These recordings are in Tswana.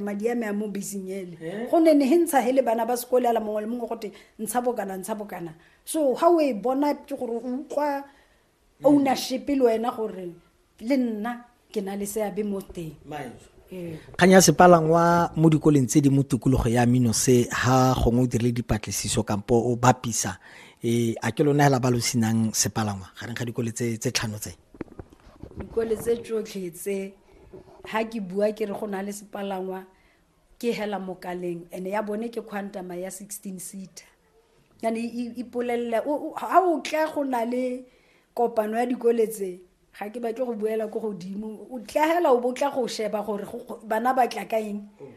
madi a me a mo beseng ele eh? go ne ne he ntsha he le bana ba sekole a la mongwe le mongwe gote ntsha bokana ntsha bokana so ga o e bona ke gore o utlwa mm. ownership le wena gore le nna ke na le seabe mo teng ee. kgang ya sepalangwa mo dikoleng tse di mo tikologo ya mino se ha gongwe o dirile dipatlisiso kampo o bapisa um a ke lona hela ba lo senang sepalangwa gareng ga dikole tse tlhano tse dikole tse tsotlhe tse ha ke bua ke re go na le sepalangwa ke hela mokaleng ene ya bone ke quantama ya 16 seater yane ipolelela ha o tla go na le kopano ya dikole tse ga ke batle go buela ko godimo o tla hela o bo tla go sheba gore bana ba tla ka eng oh.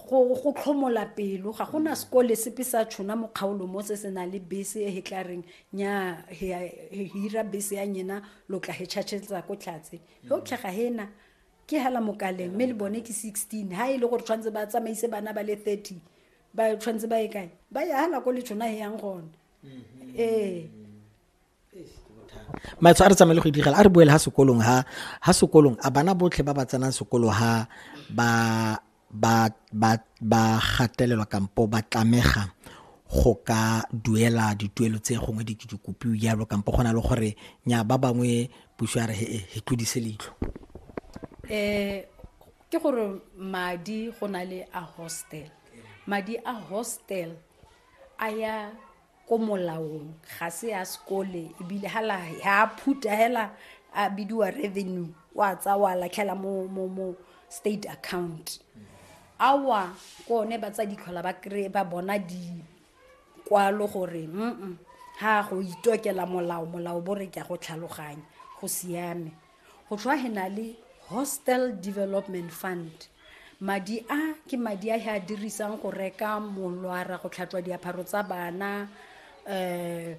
go go tlhomola pelo ga gona sekole sepe sa tshona mo kgaolo mo se se na le bese e he tla reng nya he he hira bese ya nyena lo tla he tšhatšhetsa ko tlhatse yotlhe ga hena ke hala mokaleng mme le bone ke 16 ha e le gore tshwanetse ba tsamaise bana ba le 30 ba tshwanetse ba e kae ba ya hala ko le tshona he yang gone ee maetsho a re tsamaye le go idigela a re boele ha sekolong ha ha sekolong a bana botlhe ba ba tsenang sekolo ha ba ba ba ba gatelelwa kampo ba tlamega go ka duela dituelo tse gongwe di ke di kopiwe jalo kampo go na le gore nya ba bangwe puso ya re he he tlodise leitlho um ke gore madi go na le a hostel madi a hostel a ya ko molaong ga se ya sekole ebile ga a phuta hela a bidiwa revenue o a tsa wa latlhela mo, mo, mo state account awa ke one ba tsa ditlhola ba kry ba bona dikwalo gore mm ga go itokela molao molao bo re ke ya go tlhaloganya go siame go tlhwa he na le hostel development fund madi a ke madi a he a dirisang go reka molwara go tlhatlwa diapharo tsa bana um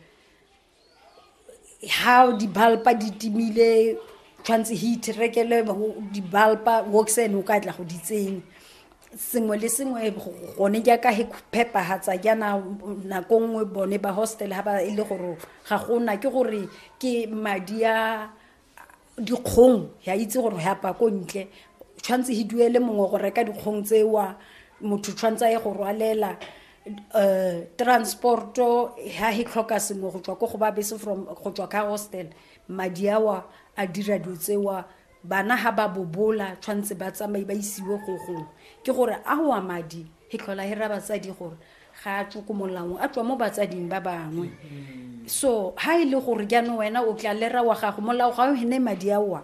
ha dibalpa di timile tshwanetse heat rekele dibalpa woxen o ka tla go di tsenya sengwe le sengwe gone jaaka he phepagatsa jaana nako nngwe bone ba hostel ga ba e le gore ga gona ke gore ke madi a dikgong ya itse gore ya pa ko ntle tshwanetse he duele mongwe go reka dikgong tsewa motho tshwanetse a ye go rwalela um transporto ha he tlhoka sengwe go tswa ko go ba bese from go tswa ka hostel madi awa a dira dilo tsewa bana ha ba bobola tshwanetse ba tsamaye ba isiwe go gongwe ke gore a wa madi he tlhola he ra batsadi gore ga a tswe ko molaong a tswa mo batsading ba bangwe so ha e le gore jaanong wena o tla lera wa gago molao ga o hene madi aoa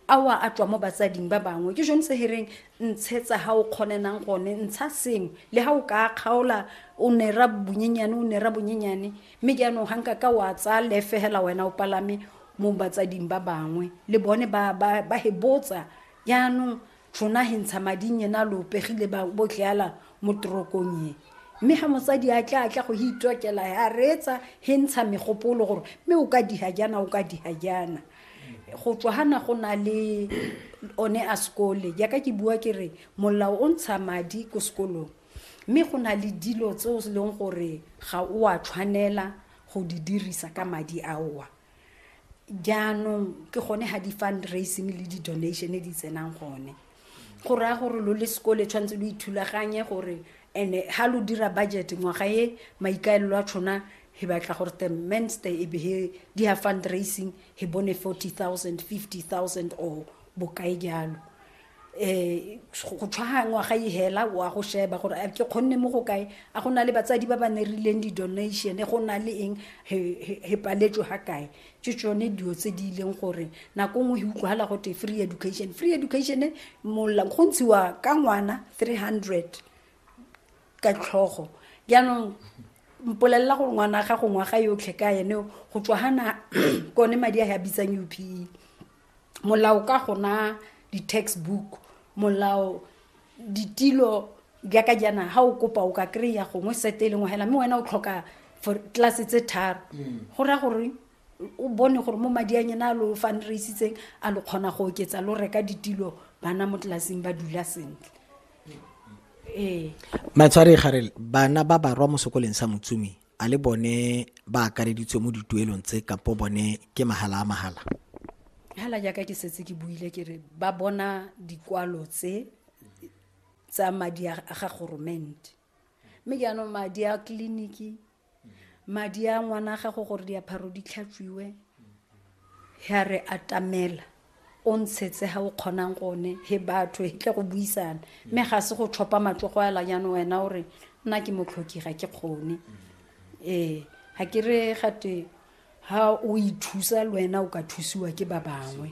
aoa a tswa mo batsading ba bangwe ke jone se hereng ntshetsa ga o kgonenang gone ntsha sengwe le ga o ka kgaola o nera bonyenyane o nera bonyenyane mme jaanong ga nka ka wa tsaya lefegela wena o palame mo batsading ba bangwe le bone ba hebotsa jaanong tšona he ntsha mading yena lo pegile ba bo tleala mo torokong ye mme ga mosadi a tla a tla go he itokela a reetsa he ntsha megopolo gore mme o ka diha jana o ka diha jana go tswa gana go na le one a sekole jaaka ke bua ke re molao o ntsha madi ko sekolong mme go na le dilo tse o leng gore ga o a tshwanela go di dirisa ka madi aowa jaanong ke gone ga di-fundraising le di-donation di tsenang gone go raya gore lo le sekole tshwanetse lo ithulaganye gore and-e ga lo dira budget ngwaga e maikaelelo a tshona he batla gore the menster e be he di ya fundraising he bone forty thousand fifty thousand or bokae jalo um go tshwaga ngwaga e hela o a go sheba gore a ke kgonne mo go kae a go na le batsadi ba ba ne rileng di-donation go na le eng he paletswe ga kae ke tsone dilo tse di ileng gore nako nngwe e utlwagala gote free education free education go ntshiwa ka ngwana three hundred ka tlhogo jaanong mpolelela gore ngwana ga go ngwaga yotlhe ka ene go tswa gana kone madi a ya bitsang upe molao ka gona di-textbook molao ditilo jaaka jaana ga o kopa o ka kry-a gongwe sete e lengwe fela mme wena o tlhoka for tlase tse tharo mm. go raya gore o bone gore mo madi a nyena a lo fundraisitseng a lo kgona go oketsa lo reka ditilo bana mo tlelaseng ba dula sentle ee matshwari garel bana ba barwa mo sekoleng sa motsumi a le bone ba akareditswe mo dituelong tse kapo bone ke mahala a mahala hala jaaka ke setse ke buile ke re ba bona dikwalo tse tsa madi a ga goromente mme jaanong madi a tleliniki madi a ngwana a gago gore diapharo di tlhatswiwe ya re atamela o ntshetse ga o kgonang gone he batho he tle go buisana mme ga se go tlhopha matsogo ela jaanong wena o re nna ke motlhoki ga ke kgone ee ga ke re gate ga o ithusa le wena o ka thusiwa ke ba bangwe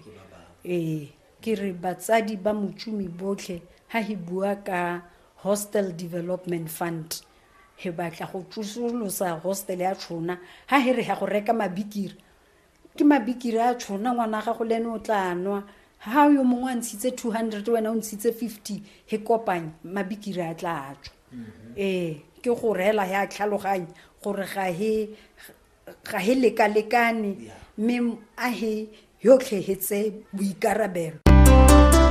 ee ke re batsadi ba motšomi botlhe ga he bua ka hostel development fund he batla go tsosolosa hostel ya tshona ga he re ya go reka mabikiri ke mabikiri a tshona ngwana gago le ene o tla nwa ha yo mongwe a ntshitse two hundred wena o ntshitse fifty he kopanye mabikiri a tla tswa mm-hmm. ee ke go reela ya tlhaloganye gore ga he ga he lekalekane mme a he yotlhe hetse boikarabelo